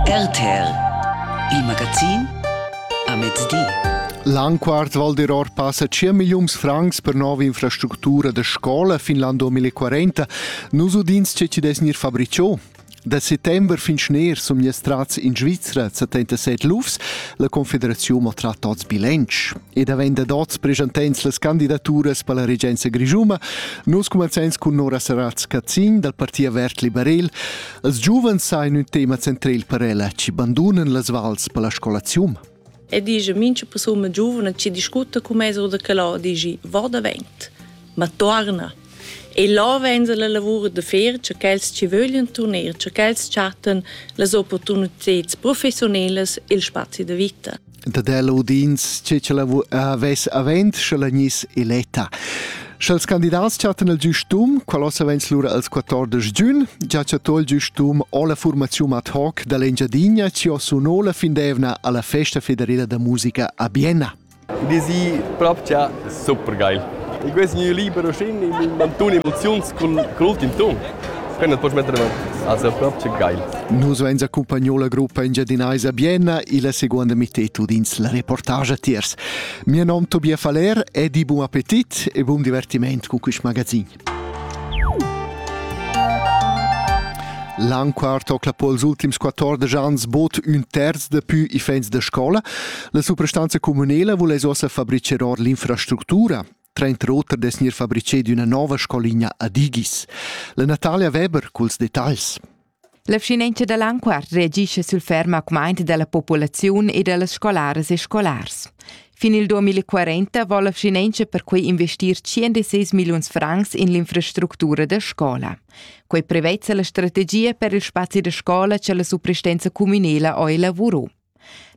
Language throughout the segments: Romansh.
RTL Il magazin a mezdi. L'anquart Val d'Iror passa 5 milliuns francs per nova infrastructura da scola fin l'an 2040. Nus udins che ti des gnir fabriciò. Da settember fin schner sun mias trats in Svizra 77 lufs. La Confederaziun maltratta tots bilench. ed avend dad oz presentents las candidaturas per la regenza grischuma, nus cumanzains cun Nora Saratz Cazzin dal Parti Avert Liberel. Els giuvens sain ün tema centrel per ella, chi bandunan las vals per la scolazium. E dice, mincha persuna giuvna chi discutta con me sur da quello, dice, va davent, ma torna. E là venza la lavur da fer, che quels ci vogliono tornare, che quels chatten las opportunità professionelas e il spazi da vita. dad ella udins che ch'ella havess avent sche la gnis eletta. Sch'els candidats chattan il giustum, qual ossa vens lura als 14 giun, già chattò il giustum o la formaziun ad hoc dall'Engiadinha ci o suno la findevna alla festa federila da musica a Bienna. Die sie propcha super geil. E questo è libero scene in mantun emozioni con l'ultimo ton. Prendet poch metter avanti. Also proprio che geil. Nus veins accompagno la gruppa engiadinaisa Bienna illa seconda mittetud ins la reportage tiers. Mio nom Tobias Faller e di buon appetit e buon divertiment con questo magazin. L'anquart tocla pols ultims 14 ans bod ün terz da pü i fens da scola. La suprastanza comunela vuless ossa fabricher or l'infrastructura. Trenter oter dess gnir fabriceid üna nova scoligna a Digis. La Natalia Weber culs detagls. La vschinenza da Lanquart reagisce sul ferm augmaint della populaziun e dellas scolaras e scolars. Fin il 2040 vo la vschinenza perquei investir 106 milliuns francs in l'infrastructura da scola. Quei prevezza la strategia per il spazi da scola che la supristenza communela oi lavuro.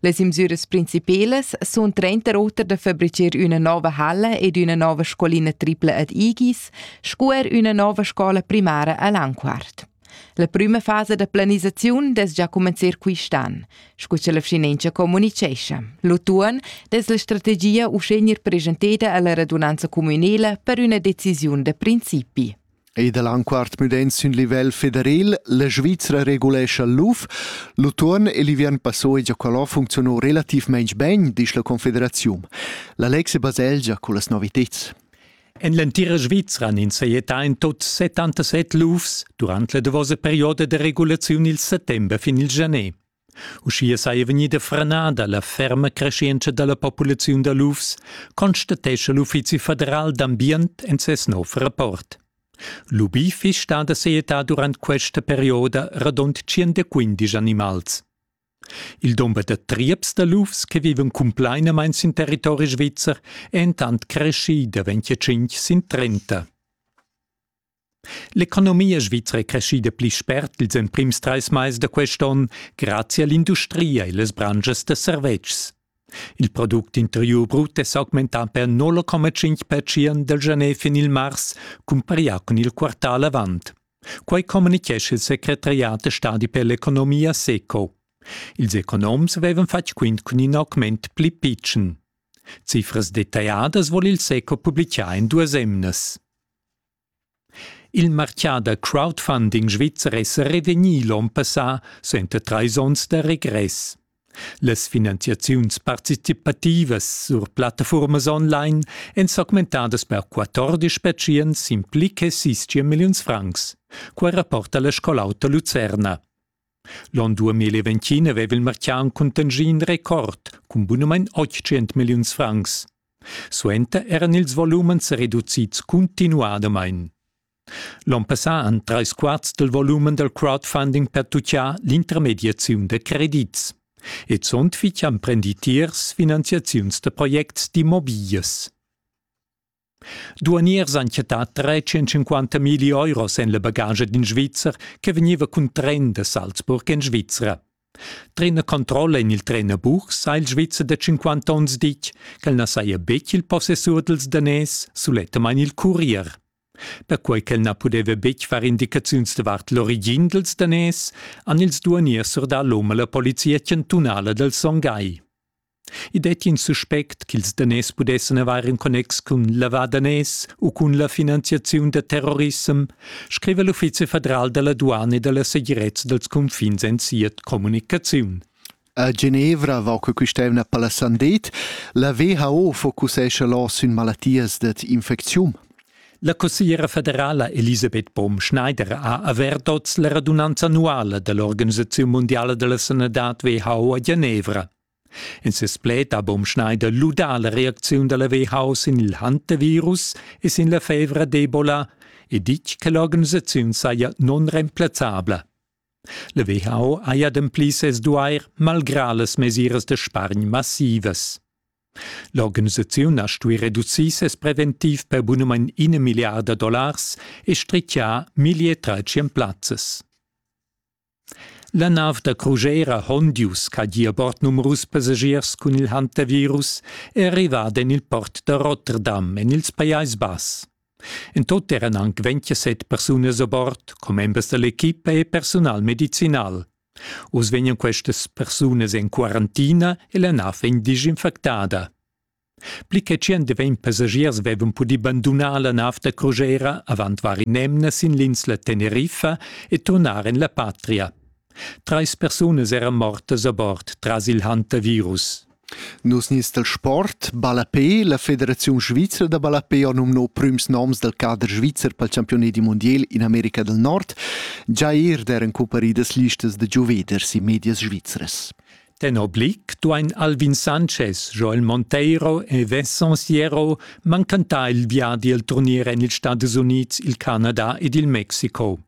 Las imsüras principelas sun trenter oter da fabricher üna nova halla ed üna nova scolina tripla ad Igis sco er üna nova scola primara a Lanquart. La prüma fasa da planisaziun dess già comencer quist'an, sco cha la vschinenza comunichescha. L'utuon dess la strategia uschè gnir presenteda alla radunanza cumünela per üna decisiun da principi. Ei dall anquart müdent sün livel federal, la Svizra regulescha l'UF. L'utuon e l'ivern passò e Giacolò funzionò relativmaing ben, disch la Confederaziun. La Lexe baselgia con las noviteds. En l'entira Svizra nin saietta in tot 77 lufs durant la davosa perioda de regulaziun il settember fin il janet. Uschia saja vegnida franada la ferma creschientscha da la populaziun da lufs, constatescha l'Uffizi federal d'ambient en ses nov rapport. L'UBI fiss stada seeta durant questa perioda radund 115 animals. Il dumber da trieps da lufs che vivan cumplainamain sin territori svizzer è entant creschì da 25 sin 30. L'economia svizra è creschida pli spert ils emprims trais mais da quest onn grazia l'industria e las branschas da servetschs. Il product interiur brut è s'augmentà per 0,5 percent dal gener fin il mars cumparià cun il quartal avant. Quai communitgescha il secretariat da stadi per l'economia SECO. Ils economs avevan fatg quint cun in augment pli pitschen. Cifras detagliadas vul il SECO publicar en duas emnas. Il martgà da crowdfunding svizzer è sa revegnì l'onn passà suenter trais onns da regress. Las finanziaziuns participativas sur plattafuormas online èn s'augmentadas per 14 pertschient sin pli che 6 milliuns francs. Quai rapporta la Scol'auta Lucerna. L'on 2020 aveva il martgà in contingì in record cun bunamain 800 milliuns francs. Suenter eran ils volumens reducids cuntinuadamain. L'on passà han trais quarts dal volumen dal crowdfunding pertutgà l'intermediaziun da credits. E zunt fitg han prendì tiers finanziaziuns da projects d'immobiglias. Duaniers han chattà 350 milli euros en la bagaggia d'in Svizzer che vegniva cun tren da Salzburg en Svizra. Trainer controlla en il trainerbuch sa il Svizzer da 50 onns ditg ch'el na saja betg il possessur dals danès, sulettamain il curier. Perquai ch'el na pudeva betg far indicaziuns davart l'origin dals danès, han ils duaniers surdà l'um a la polizia chantunala dal Songhai. I detti in suspect ch'ils daners pudessan avair in connex cun lavar daners u cun la finanziaziun da terrorissem, scriva l'Uffizi federal da la duana e da la segirezza dals cunfins en sia communicaziun. A Genevra va che quest'evna Palasandet, la WHO focusescha là sün malattias dad infecziun. La consigliera federala Elisabeth Baum-Schneider ha avert oz la radunanza annuala dell'Organisazione Mondiale della Sanità WHO a Genevra. In ses pled ha Bom Schneider ludà la reacziun da la WHO sin il hantavirus e sin la fevra d'Ebola e ditg che l'organisaziun saja nunremplazzabla. La WHO haja ademplì ses duair malgrà las mesiras da spargn massivas. L'organisaziun ha stuì reducir ses preventiv per bunamain ina milliarda dollars e strichià 1300 plazzas. La nav da crugera Hondius ch'ha gia bord numerus passagiers cun il hantavirus è arrivada en il port da Rotterdam en ils Pajais Bass. En tut eran anc 27 persunas a bord, commembers da l'equipa e personal medicinal. Oz vegnan questas persunas en quarantina e la nav vegn disinfectada. Pli che tschient e ventg passagiers vevan pudì bandunar la nav da crugera avant var in'emna sin l'insla Teneriffa e turnar en la patria. Trais persunas eran mortas a bord tras il hantavirus. Nus nins dal sport, ballapé, la Federaziun svizra da ballapé ha numnò prüms noms dal cader svizzer pel champiunedi mondial in America del Nord, già eir der en cumparidas listas da giuveders in medias svizras. Tenor Blick duain Alvin Sanchez, Joel Monteiro e Vincent Sierro mancantar il viadi al turnier en ils Stadus Unids, il Canada ed il Mexico.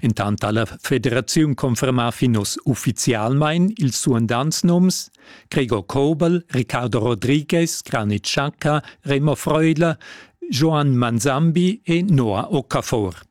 Intant ha la federaziun confermà fin oz uffizialmain ils suandants nums: Gregor Kobel, Ricardo Rodriguez, Granit Xhaka, Remo Freudler, Joan Manzambi e Noah Okafor.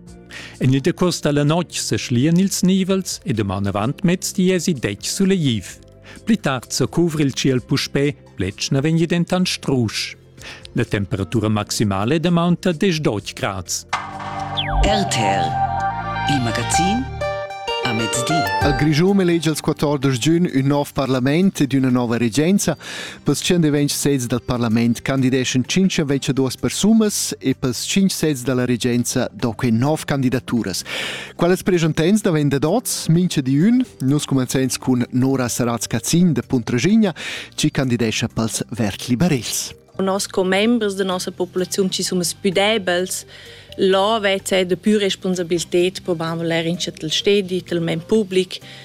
En il decurs da la notg seschlian ils nivels e duman avant mez diesi detg suleiv. Pli tard sa cuvra il tschiel puspè, pletg na vegni dentant strusch. La temperatura maximale damonta 10 grads. RTL, il magazin a mezdi. Al Grischun elegia il 14 giugn un nov parlament ed una nova regenza. Pels tschendevench sezs dal parlament candideschan tschinch invece duos persunas e pels tschinch sezs da la regenza do que nov candidaturas. Quales preschantains da vender dots, mincha di ün, nus cumanzains cun Nora Saratz-Cazin da Puntraschigna, chi candidescha pels verd-liberels. Nos commembers da nossa populaziun ci sun pudebels, là vezza da pür responsabilted, probam valer in chatel stedi, tel men public,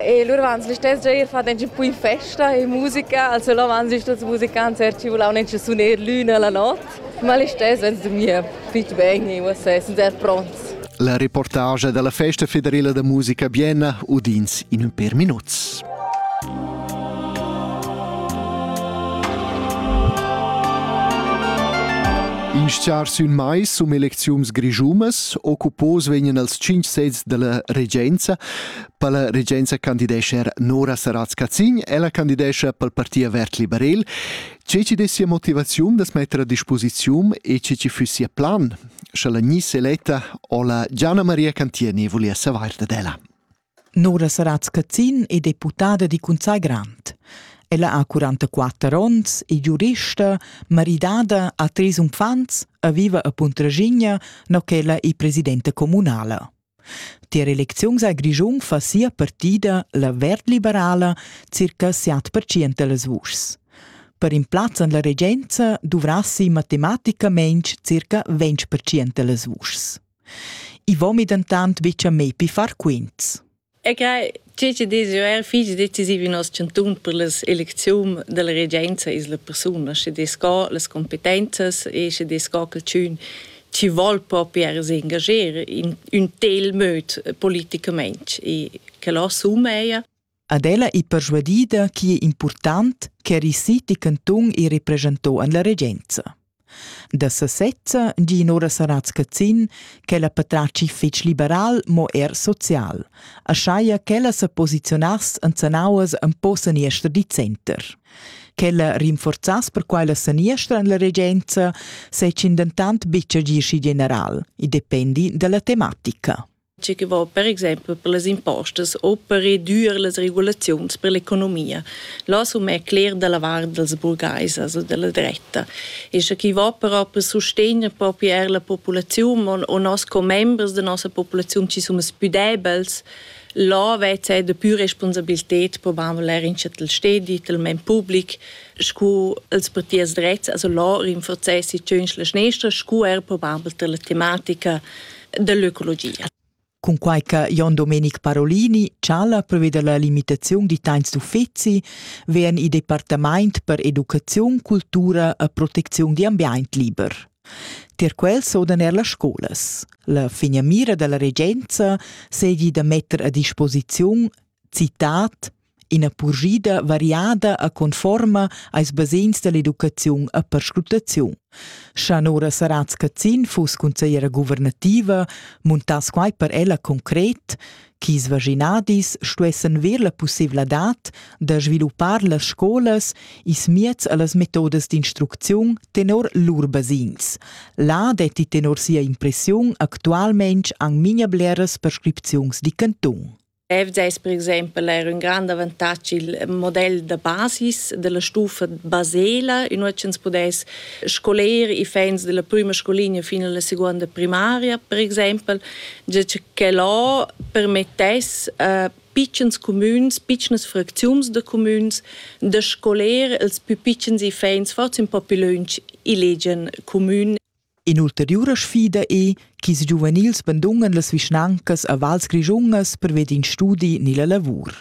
E lur vans listess gia ir fat engi pù in festa e musica, also là vans gist als musicants er ci vulau nenci suner l'una la not, ma listess vens dormir fitg ben e uossa sun er pronts. La reportage dalla festa federela da musica Bienna udins in ün per minuts. In schar sün mai sum elecziums grischumas occupos vegnan als 5 sezs dalla regenza Per la regenza candidescha er Nora Saratz-Cazin, ella candidescha pel parti avert liberel. Che ci dessia motivaziun das metter a disposiziun e che ci fussia plan, sche la gnisse eletta o la Gianna Maria Cantieni volia savair dad ella. Nora Saratz-Cazin è deputada di Cunsai Grant. Ella ha 44 onns, è giurista, maridada, ha tres unfants e viva a Puntraschigna, no ch'ella è presidenta comunala. Tier elecziuns al Grischun fa sia partida, la verd-liberala, circa siat percent dallas vuschs. Per in plaz en la regenza duvrassi matematicamain circa 20 percent dallas vuschs. I vomi dentant betg a me pi far quints. E grei Tge che desio er fich decisiv in nos chantun per las elecziun della regenza is la persuna, sche des ca las competenzas e sche des ca calchün chi vol propi er s'engager in ün tel möd politicament e che lo assuma ella. Ad ella è persuadida chi è important che eri siti cantun e represento an la regenza. Da sesezza di Nora Saratz Cazin ch'ella patratgi fetg liberal, mo er social, aschia ch'ella sa posiziunass en zanauas empau saniester di center. Quella rinforzass per quella saniestra en la regenza, secin dentant buca gie schi general, i dependi dalla tematica. tge che va per exempel per las impostas u per reduir las regulaziuns per l'economia. Là som è cler da la vart dels burgaisas o della dretta. E sche chi va però per sustegner proprio er la populaziun o, o nos commembers da nossa populaziun ci som pü debels, là vezza er da pü responsabilität probabel er in chatel stedi, tel men public, scu els partiers drets, also là rinforzessi tschöns la schnestra, scu er probabel tel la tematica dell'ecologia. Cunquai che Jon Domenic Parolini chala preveda la limitaziun di tains d'uffizi, vegn il departament per educaziun, cultura e proteziun di ambient liber. Tier quel sodan er las scolas. La figna mira dalla regenza seigi da metter a disposiziun citat Ina purschida variada e conforma als basegns dall'educaziun e perscrutaziun. Scha Nora Saratz Cazin fuss consigliera guvernativa, muntass quai per ella concret, ch'is vaginadis stuessen ver la pussevladad da sviluppar las scolas is miez allas metodas d'instrucziun tenor lur basegns. Là detti tenor sia impressiun actualmente anc minia bleras prescripziuns di cantun. FDS per exempel era un grande avantatg il model de basis della stufa Basela in cui ins pudess scoler i fans della prima scolinea fino alla seconda primaria per exempel che là permettesse a piccins comüns, piccines fracziuns de comüns de scoler els più piccins i fans forse un po più lunch i legian comün In'ulteriura sfida è ch'ils giuvenils bandungan las vischnancas a vals grischungas perved in studi ni la lavur.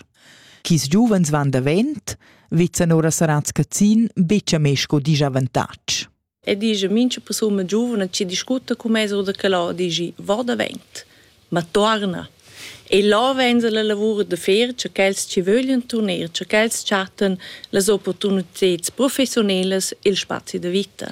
Ch'ils giuvens van davent, vezzan ora Saratz Cazin betg a me sco disavantatg. E dice, mincha persuna giuvna ci discute con me oder che là, dici, va davent, ma torna. E là venza la lavur de fer, che quels ci vogliono tornare, che quels chatten las opportunità professionelas, il spazi de vita.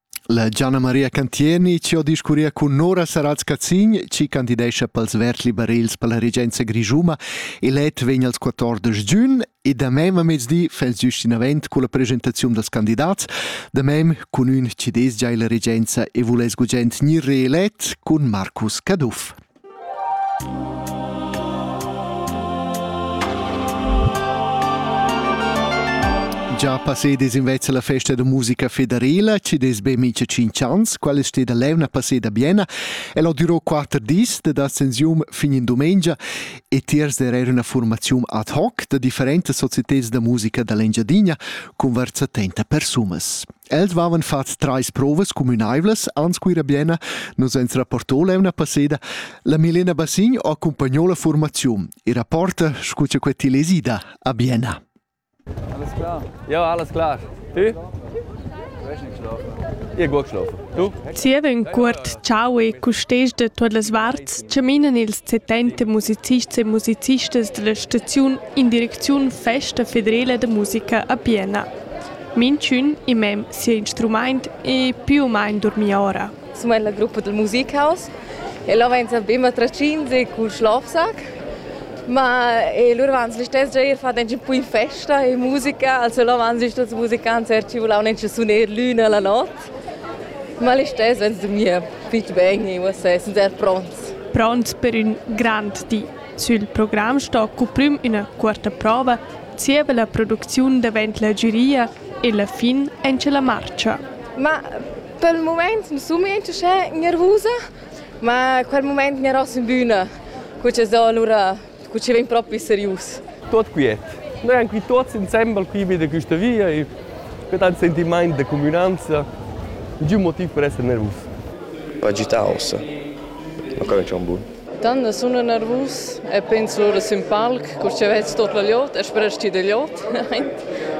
La Gianna Maria Cantieni chi ho discurria cun Nora Sarals-Cazin chi candidescha pels verds liberels per la regenza grischuna elet vegn als 14 giun e da mem a mezdi fels giust inavent culla presentaziun dals candidats, da mem cun ün chi desgia illa regenza e vuless gugent gnir reelet cun Marcus Caduff. Già passedes invece la festa da musica federela, ci des be mica 5 ans, quella steda levna passeda Biena, e lo durò 4 dis de ascensium fin in domenica e tiers der era una formazione ad hoc da differentes societés da musica dall'Engiadina con versa 30 persumas. Els vavan fats trais provas cumünaivlas aunz Cuira Bienna, nus ans rapporto l'eivna passeda. La Milena Bassign accumpagnò la formaziun e rapporta scu cha quai til es ida a Bienna. Alles klar? Ja, alles klar. Tu? Io gut geschlafen. Tu? Zievin cuort ciao e custes de tuot las varts chaminan ils setenta musicists e musicistas della staziun in direcziun Festa federela de musica a Bienna. Minchün in mem sia instrumaint e più u main durmia ora. Insomma è la gruppa del Musikhaus e là vain be matracins e cul schlafsack ma e lur van sli stess già ir fat ün po in festa e musica, also là van sli stess musicants er ci vulau nen suner l'üna la not, ma lì stess van dormir fitg bene e uossè sun er pronts. Pronts per ün grand di. Sül program sto cuprüm üna cuorta prova zieva la producziun davent la giuria e la fin auncha la marcha. Ma pel mumaint nu sun miez uschè gnervusa, ma quel mumaint gnaross in büna, cu cha so alura, cu chi vegn propi serius. Tuot quiet. Noi han qui tuots insembel qui vi da quista via e que dà ün sentimaint da cumünanza, nichün motiv per esser nervus. Agitaus. Ma come c'è un buon? Tanna sun eu nervus e pens ora sün palc, cur cha vezs tot la glieud e sperast ti da glieud.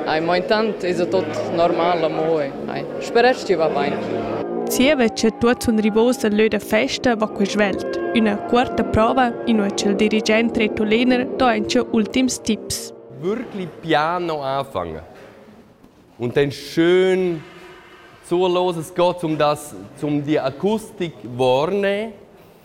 Ai, mo intant esa tot normal amo e ai, sperast ti va bain. Zieva cha tuot sun rivos dal lö da festa va que svelt. Üna cuorta prova, inua cha'l dirigent Reto Lehner do auncha ultims tips. Wirklich piano anfangen. Und dann schön zur loses Gott, um das, um die Akustik wahrnehmen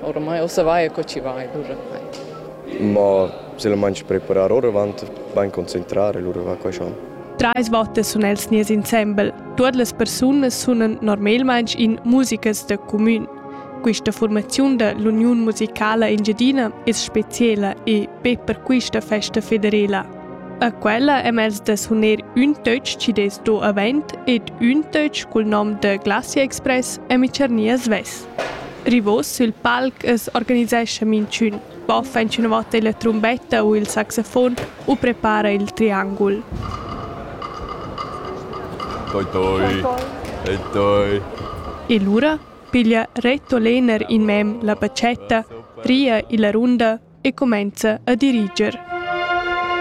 Ormai ossa vai co ci vai l'urenai. Ma se la mangi preparar oravant, vain concentrar e lura va quai schon. Trais votas sun els nies insembel. Tuot las persunas sunan normalmaing in musicas da cumün. Questa formaziun da l'Uniun musicala engiadina es speciela e be per questa festa federela. A quella hem els da suner ün töch chi des do avent ed ün töch cul nom da Glacia Express e Micernia Sves. Rivos sil palc as organisescha minchün, boffa inchünavot illa trumbetta u il saxofon u prepara il triangul. Toi toi. E toi. E lura piglia Reto Lehner in mem la batschetta, ria illa runda e cumenza a diriger.